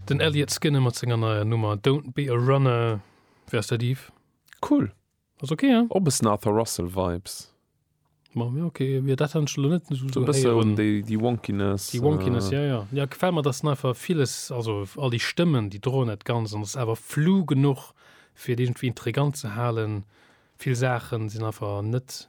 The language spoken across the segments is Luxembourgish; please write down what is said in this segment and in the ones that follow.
Den Elliot Skinner mat senger neier Nummer Don't Be A Runner, wéi ass dat Yves? Cool, ass ok hein? Och bessen Arthur Russell Vibes. Ma jo ok, mir dat hat ech lo net esou esou héieren. Déi Wonkiness. Déi Wonkiness jo jo, jo gefällt mer, dass en einfach villes, also all déi Stëmmen déi droen dat Ganzt an ass awer flou genuch fir et iergendwéi intrigant ze halen. Vill Saachen sinn einfach net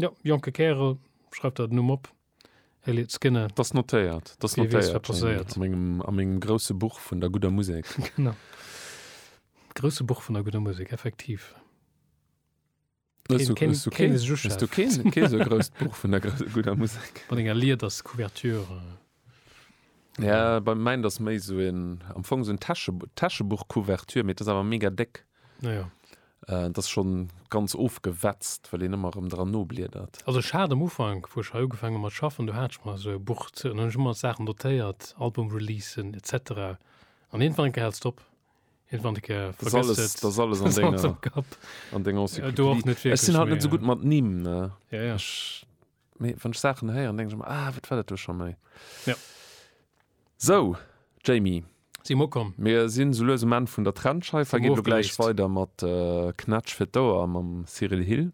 Jo, jonke Kärel, schreif der den Numm op, Elliott Skinner. T'ass notéiert, t'ass notéiert. Wie weess, wat passéiert. A mengem, a mengem grousse Buch vun der gudder Musek. Genau. Grousse Buch vun der gudder Musek, effektiv. Hues du, hues du keen, hues du keen, keen sou grousst Buch vun der gudder Musek? Mat enger Liederscouverture. Ja, bei mäin ass méi esou en, am Fong esou en Täsche, Täschebuch-Couverture, mee et ass awer mega déck. Ah ja. Äh, et ass schonn ganz ofgewetzt, well een ëmmer erëm dran nobliedert. Also ech hat am Ufank, wou ech hei ugefaangen hunn mat schaffen, do hat ech mer esou e Buch ze, an hunn ech ëmmer Saachen notéiert, Album-Releasen et cetera, an iergendwann eng Kéier hält et op. Iergendwann eng Kéier Da ass vergësst alles, et, da ass alles an ass alles denger, am Kapp. an denger Ja, do och Encyclopedie. net Ech sinn wierklech halt net méi, esou gutt mat Nimm, ne? Ja, ja. Ech. Mee wann ech Saachen héieren, denke ech mer, ah, wat war dat do scho méi? Ja. So, Jamie. Si mer ukomm. Mir sinn sou lues um Enn vun der Trennscheifer. Geet elo gläich weider mat Knätsch fir d'Ouer mam Cyril Hill.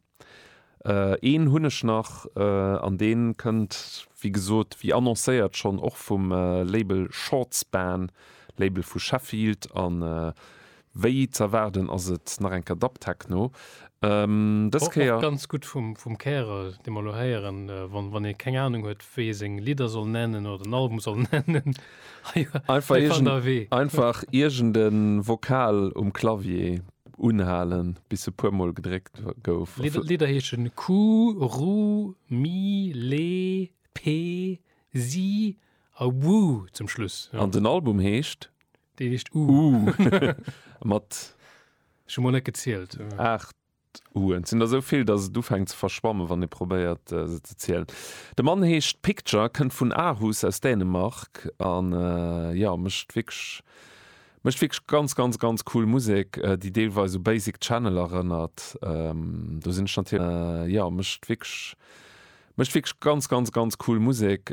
Een hunn ech nach an dee kënnt, wéi gesot, wéi annoncéiert schonn och vum Label Shortspan, Label vu Sheffield. An Wéi z'erwaarden ass et nach eng Kéier Dubtechno, dës Kéier. Och ganz gutt vum Kärer, dee mer elo héieren. Wann ee keng Anung huet, wéi ee seng Lidder soll nennen oder den Album soll nennen, hei fannt Der e Wee. Einfach iergend e Vokal um Clavier unhalen, bis e puermol gedréckt gouf. D'Lidder heesche Ku, Ru, Mi, Le, Pe, Si a Wu zum Schluss. An den Album heescht Déi heescht U. Uh, mat. Ech hu mol net gezielt. Aacht Uen. Et sinn der esou vill, datt et ufänkt ze verschwammen, wann ee probéiert se ze zielen. De Mann heescht Picture, kënnt vun Aarhus aus Dänemark a jo, mécht wierklech, mécht wierklech ganz, ganz, ganz cool Musek, déi deelweis u Basic Channel erënnert. Do sinn ech natierlech, jo, mécht wierklech, mécht wierklech ganz, ganz, ganz cool Musek.